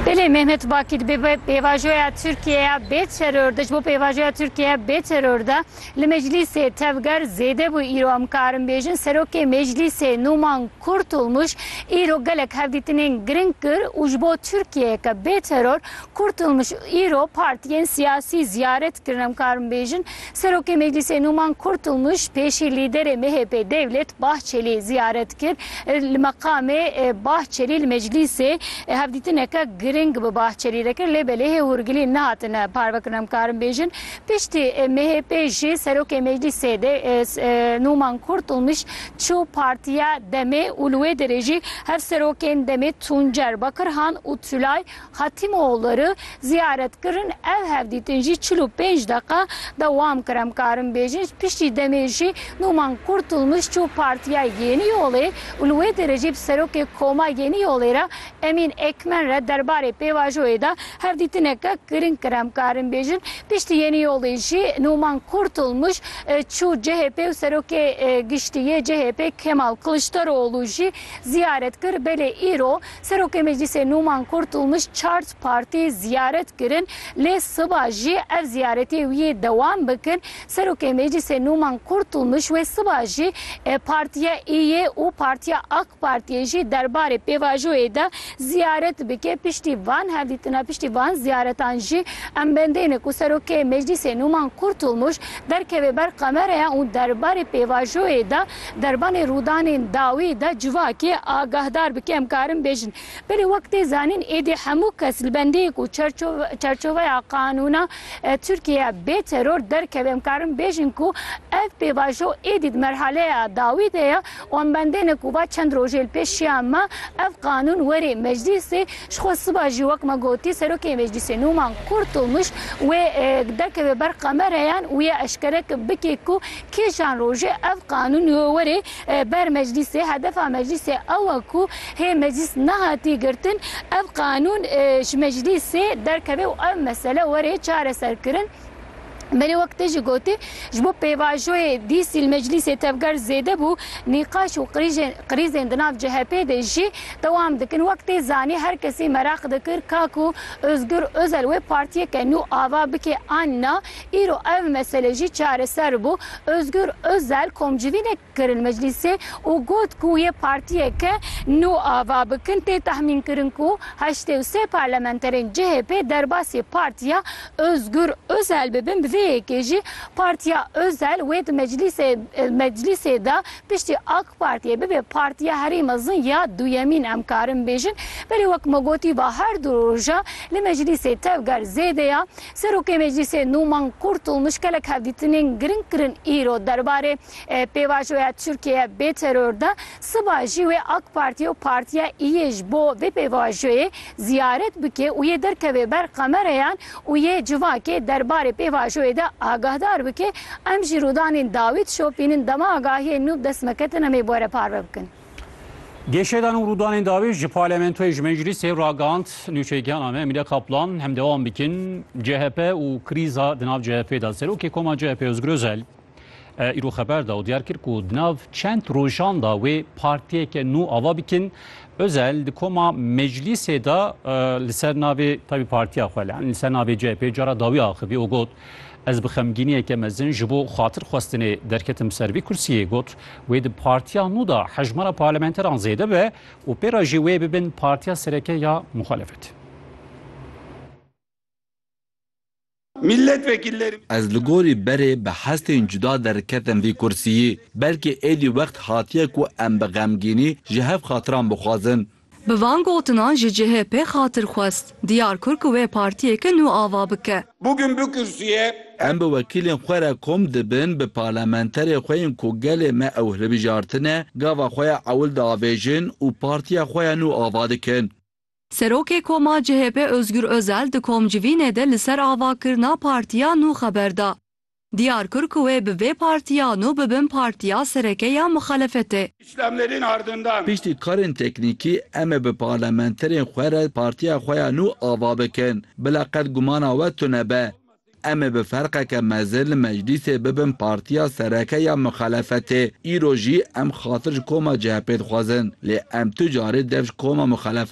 Belê Mehmet Bakîr bi pêvajoya Tirkiyeya bê teror de ji bo pêvajoya Tirkiyeya bê teror de li meclîsê tevger zêde bû îro em karin bêjin Serokê Meclîsê Nûman Kurtulmuş îro gelek hevdîtinên giring kir û ji bo Tirkiyeyeke bê teror Kurtulmuş îro partiyên siyasî ziyaret kirin em karin bêjin Serokê Meclîsê Numan Kurtulmuş pêşî lîderê MHP'ê Devlet Bahçelî ziyaret kir. Li meqamê Bahçelî li Meclîsê hevdîtineke giring bi Bahçelî re kir lê belê hê hûrgilî nehatine parvekirin em karin bêjin. Piştî MHP'ê jî Serokê Meclîsê Numan Kurtulmuş çû Partiya Demê û li wê derê jî hevserokên Demê Tuncer Bakirhan û Tülay Xatîmoğulları ziyaret kirin ev hevdîtin jî çil û pênc deqa dewam kir em karin bêjin piştî demê jî Nûman Kurtulmuş çû Partîya Yenî Yolê û li wê derê jî bi Serokê Koma Yenî Yolê re Emîn Ekmen re derbarê pêvajoyê de hevdîtineke giring kir em karin bêjin piştî Yenî Yolê jî Nûman Kurtulmuş çû CHP û Serokê Giştî yê CHPê Kemal Kiliçdaroğlu jî ziyaret kir belê îro Serokê Meclîsê Nûman Kurtulmuş çar partî ziyaret kirin lê siba jî ev ziyaretiyê wî yê dewam bikin. Serokê Meclîsê Nûman Kurtulmuş wê siba jî Partiya Îyê û Partiya AK Partiyê jî derbarê pêvajoyê de ziyaret bike. Piştî van hevdîtina piştî van ziyaretan jî em bendêne ku Serokê Meclîsê Nûman Kurtulmuş derkeve ber kameraya û derbarê pêvajoyê de Derbanê rûdanên dawî de civakê agahdar bikin. Em karin bêjin belê wek tê zanîn êdî hemû kes li bendiyê ku çerçoveya qanûna Tirkiyeyê ye bê teror derkeve. Em karin bêjin ku ev pêvajo êdî di merhaleya dawî de ye û em bendêne ku va çend rojê li pêş şiya me ev qanûn were meclîsê. Ji xwe siba jî wek me gotî serokê meclîsê Nûman Kurtulmuş wê derkeve ber kamereyan û ya eşkere bike ku Kîjan rojê ev qanûn û werê ber meclîsê, hedefa meclîsê ew e ku hê meclîs nehatî girtin ev qanûn ji meclîsê derkeve û ev mesele were çareserkirin. Belê wek te jî gotî, ji bo pêvajoyê dîsî li meclîsê tevger zêde bû, nîqaş û krîzên di nav CHP'ê de jî dewam dikin. Wek tê zanîn her kesî meraq dikir ka ku Ozgur Ozel wê partiyeke nû ava bike an na. Îro ev mesele jî çareser bû. Ozgur Ozel komcivînek kir li meclîsê û got ku yê partiyeke nû ava bikin. Tê tahmînkirin ku heştê û sê parlamenterên chp derbasî partiya Ozgur Ozel bibin. Bi vê yekê jî partiya Ozel wê di meclîsê de piştî AK Partiyê bibe partiya herî mezin ya duyemîn em karin bêjin. Belê wek me gotî va her du roja li meclîsê tevger zêde ya. Serokê Meclîsê nû Meng Kurtulmuş gelek hevdîtinên giring kirin îro derbarê pêvajoya Tirkiyeye bê teror de, siba jî wê AK Partî û Partîya Îyê ji bo vê pêvajoyê ziyaret bike û yê derkeve ber kamereyan û yê civakê derbarê pêvajoyê de agahdar bike, em jî rûdanên dawî dişopînin dema agahiyên nû bi dest me ketin em ê bi we re parve bikin. Gêşedan û rûdanên dawî ji parlamentoyê ji meclîsê ragihand nûçeyîkiyana me Emîle Kaplan hem dewam bikin CHP û krîza di nav CHP'ê de Serokê Koma CHP Ozgur Özel îro xeber da û diyar kir ku di nav çend rojan da wê partiyeke nû ava bikin Özel di koma meclîsê de li ser navê tabî partiya xwe li ser navê CHP'ê cara dawî axivî û got Ez bi xemgîniyeke mezin ji bo xatirxwestinê derketim ser vî kursiyê got, wê di partiya nû de hejmara parlamenteran zêde be û pê re jî wê bibin partiya sereke ya muxalefet. Ez li gorî berê bi hestên cuda derketim vî kursiyê. Belkî êdî wext hatiye ku em bi xemgînî ji hev xatiran bixwazin. Bi van gotinan ji cihê pê xatir xwest diyar kir ku wê partiyeke nû ava bike. Bugün bu kürsüye. Em bi wekîlên xwe re kom dibin, bi parlamenterê xwe yên ku gelê me ew hilbijartine, gava xwe ya ewil diavêjin û partiya xwe ya nû ava dikin. Serokê koma CHP Ozgur Ozel di komcivînê de li ser avakirina partiya nû xeber da. Diyar kir ku wê bi vê partiyan û bi bin partiya sereke ya muxalefetê. Îslamlêrên ardindan. Piştî karên teknîkî em ê bi parlamenterên xwe re partiya xwe ya nû ava bikin. Bila qet gumana we tune be. Em ê bi ferqeke mezin li meclîsê bibin partiya sereke ya muxalefetê. Îro jî em xatir ji koma chp dixwazin. Lê em tu carî dev ji koma muxalefet.